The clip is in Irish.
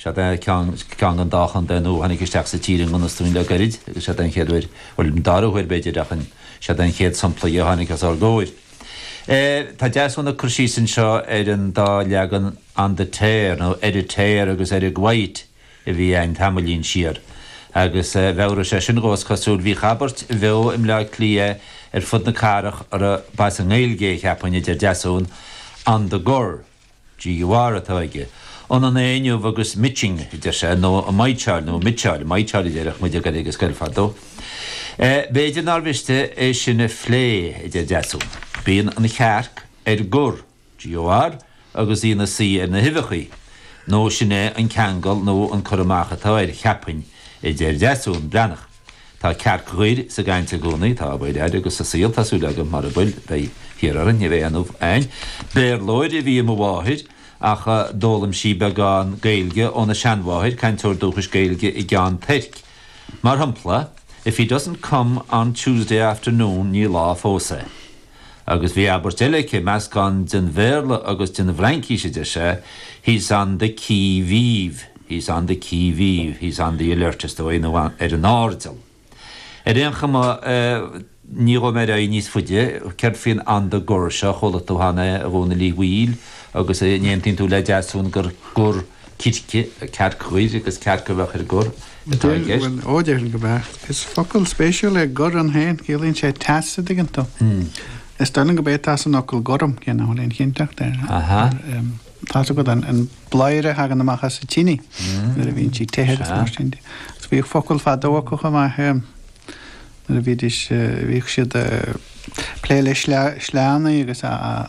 Siod é ceann den dá chontae nua a tháinig isteach sa tír i ngan fhios dúinn le gairid agus siod é an chéad uair, bhuel, an dara huair, b'fhéidir, ach siod é an chéad sampla dhe a tháinig os ár gcomhair. Tá Deasún ag cur síos anseo ar an dá leagan On the Tear, nó Ar an Tear agus Ar an gCvedt a bhí a'inn tamaillín siar. Agus mheabhraigh sé sin dhom, is cosúil, bhíodh abairt bheo i mBleá Cliath ar fud na cathrach a raibh, ba as an nGaeilge é, cheapfainn, a deir Deasún, On the Gur. GUR atá aige. Ionann é inniu agus mitching, a deir sé, nó ag maidhtseáil, nó ag mitseáil, maidhtseáil a déarfadh muid ag goil ag an scoil fadó. B'fhéidir nár mhiste é sin a phlé, a deir Deasún. Bíonn an chearc ar gor, GOR, agus í ina suí ar na huibheachaí, nó sin é an ceangal nó an cur amach atá air, cheapfainn, a deir Deasún. Breathnach. Tá cearc ghoir sa gcaint i gcónaí, tá, abair, air, agus sa saol, tá súil agam, mara bhfuil, beidh thiar orainn, ní bheidh aon ubh a'ainn. Béarlóir a bhí i mo mháthair, ach d'fhoghlaim sí beagán Gaeilge óna seanmháthair, cainteoir dúchais Gaeilge i gCeann Toirc. Mar shompla, If he doesn't come on Tuesday afternoon, ní lá fós é. Agus bhí abairt eile aici, meascán den Bhéarla agus den bhFraincís, a deir sé, He's on the qui vive, he's on the qui vive, he's on the alert, is dóigh, nó ar an airdeall. Ar aon chuma, ní ghabhfaidh mé ar aghaidh níos faide, céard faoin on the gur seo, ar chuala tú cheana é, a Dhónaill Uí Bhaoill, agus an aontaíonn tú le Deasún gur gor. circe, cearc ghoir agus cearc a bheadh ar gor, atá i gceist. Bhuel, ó déarfainn go mbeadh, is focal spéisiúil é gor ann féin, ciallaíonn sé teas an dtuigeann tú. Is dóigh liom gurb é atá san fhocal gorm cé nach bhfuil aon chinnteacht air, tá a fhios agat an bladhaire a thagann amach as an tine nuair a bhíonn sí te agus mar sin de. Agus bhíodh focail fadó acu chomh maith nuair a bhídís, bhíodh siad ag plé le sleánnaí agus a.